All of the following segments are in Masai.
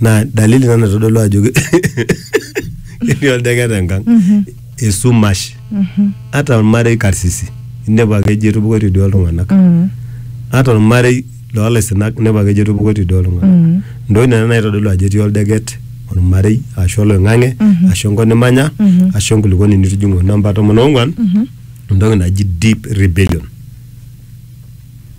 naa dalili ina naitodolu ajo ke- ketii oldeket enkang esumash ata ormarei karsisi inepu ake ejo etupukoitie duo iltung'anak Mm. ata ormarei loolaisinak inepu ake ejo etupukoitie duo iltung'anak Mm. ntokitin nena naitodolu ajo etii oldeket ormarei ashu oloing'ang'e Mhm. ashu enkop nimanya Mhm. ashu enkulukuoni nitijing'ua namba tomon oong'wan Mhm. entoki naji deep rebellion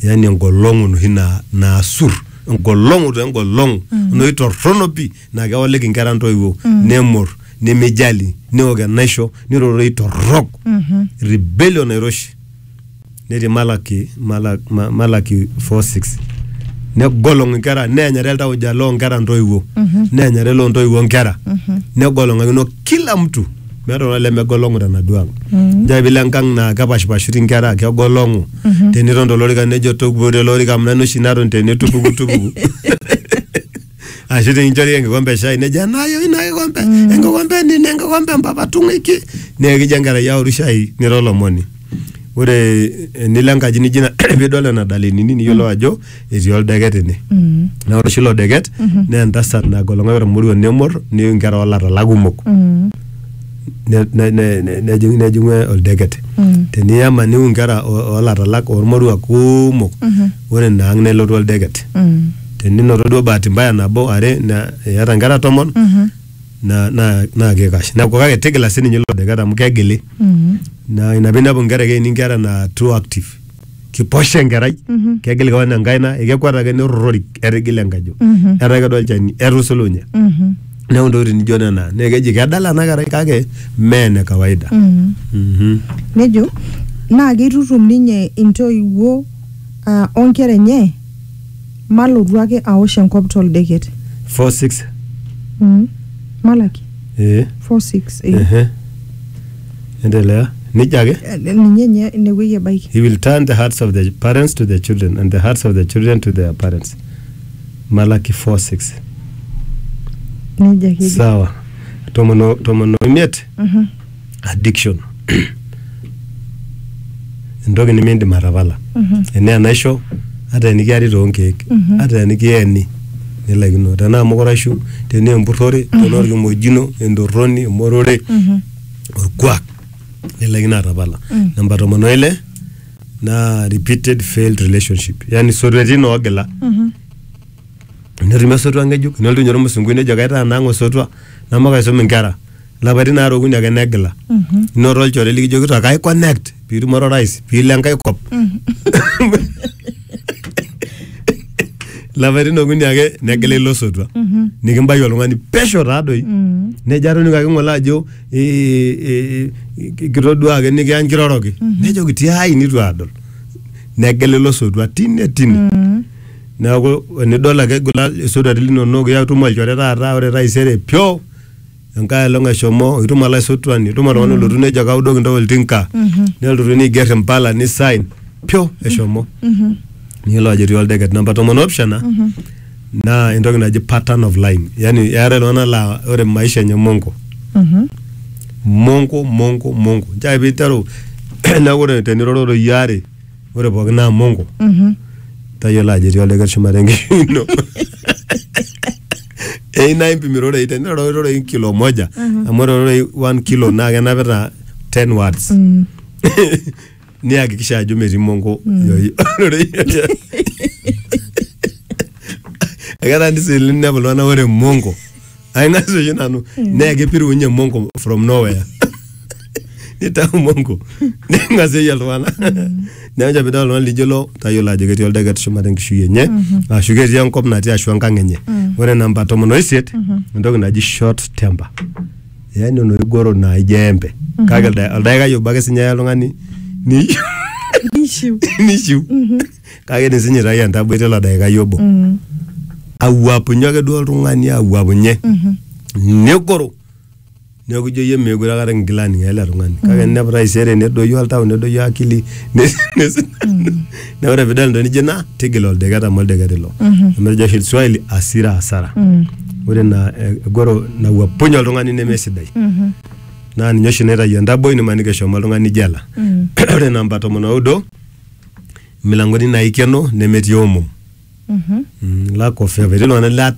yaani engolong'u enoshi naa- naasur engolong'u to engolong'u noi torrono pi naa kewaliki inkera ntoiwuo nemor nemijali neok enaisho nirorei torrok rebellion nairoshi netii Malaki, Malaki, Malaki 4:6 negolong'u inkera neenyare iltauja loonkera ntoiwuo neenyare loo ntoiwuo nkera negolong'akino kila mtu meeta oltung'ani lemegolong'u tenaduo ang njaa pilo enkang naa kepashipashuti inkera kegolong'u teniton tolorika nejo tupuku tele orika amu nanu oshi naton tene tupuku tupuku ashu tekinchori enkikompe e shai nejo enaayoi ina kikompe enkikompe e nini enkikompe e mpapa tung'uiki naa ekijo enkerai aoru shai nira olomoni ore enilo enkaji nijo ina pidol nena dalenini niyiolou ajo etii oldeket ine Mm. naa ore oshi ilo deket naa entasat nagolong'oki ormoruo nemor neiu inkera oolatala kumok Mm. ne- ne- ne- ne- nejing' nejing'u oldeket Mm. teniyama niu inkera o- oolatalak ormoruak kumok Mhm. ore ina ang' nelotu oldeket Mm. teninoto duo bahati mbaya nabo are na- iyata inkera tomon Mhm. na- na- naa kikash neeku kake tigila sininye ilo deket amu kegili Mm. na ina piinepu inkera ekeini inkera naa too active kiposha enkerai kegil kewan enkaina ekekwet ake nerrorori etigila enkajo etaa kedua olchani etusulunye neeku intokitin nijo nena naa keji kedala ena kerai kake mee ene kawaida Mhm. nejo naa keitutum ninye intoiwuo ah, onkera enye malotu ake aosh enkop toldeket four six Mm. malaki eh 46 eh. ehe endelea nejia ake ninye nye inewueji ebaiki he will turn the hearts of the parents to the children and the hearts of the children to their parents malaki 4:6 nejia ake eji. sawa tomon o- tomon oimiet Mhm. addiction entoki nimindim atapala Mhm. enaa enaisho ata enikiari toonkeek Mhm. ata enikieni nilaikino tenaa mukuraishu tenaa empurrore tenaa orkimojino entorroni emorore Mhm. orkuak nilaikino atapala mm. namba tomon oile naa repeated failed relationship yani sotuetin oogila mm-hmm. netumi osotua ng'ejuk nelotu ninye ormusungui nejo kaitaa nang osotua namakaisum inkera lapaitin aare okuni ake negila mm-hmm. inoto olchore likijokito kai connect piitumore orais piilo enkae kop lapaitin okuni ake negila ilo sotua nikimbaiki oltung'ani pesho taadoi nejo atoning'o ake ng'ole ajo eh, eh, eh, kitodua ake nikiya nkiroroki nejoki tiai nitu adol negila ilo sotua tine tine neeku enidol ake egila isotuati linonok iyatum olchore taata ore taisere pyo enkae olong eshomo itum olaisotuani itum oltung'ani olotu nejo kaudoki ntae oltinka nelotu neiger impala nisain pyo eshomo niyiolo ajo etii oldeket namba tomon opishana naa entoki naji pattern of lying yani eetae iltung'anak laa ore maisha enye mongo mongo mongo mongo nchoo ake piiteru neeku ore teniroro iyioo are ore pookin naa mongo tayiolo ajo etii oldeker shumata enkishui ino eyieu naa impim irorei tenira irorei kilo moja amu ore ororei one kilo naa kenapita 10 words niyakikisha ajo metii mongo yoi- ororei eketaana sii ninepu iltung'anak ore mongo ainasu oshi nanu naa kipirunye mongo from nowhere nitau mongo neng'asieyie iltung'anak neeku nche pidol oltung'ani lijo ilo tayiolo ajo ketii oldeket shumata enkishui enye ashu ketii enkop natii ashu enkang enye ore namba tomon oisiet entoki naji short temper yani oloigoro naa ijo embe kake ilda- oldakikai obo ake sinye eya oltung'ani ni- Ishu. nishiu kake tisinya itayu entaboi tilo daikai obo awuapunye ake duo oltung'ani awuapunye negoro neeku ijo iyie meekure akata kingila aning ele tung'ani kake ninepu taisere nedoyio oltau nedoyio akili nes- nes- na ore pidol entoki nijo ina tigila oldeket amu oldeket ilo amu etejo oshi swahili asira asara ore ina eh, egoro nawuapunye oltung'ani nemesidai naa ninye oshi naitayu entaboi nimaniki eshomo oltung'ani jela ore namba tomon oudo imilangoni naikeno nemetii omom mm, lack of evidence iltung'anak lat-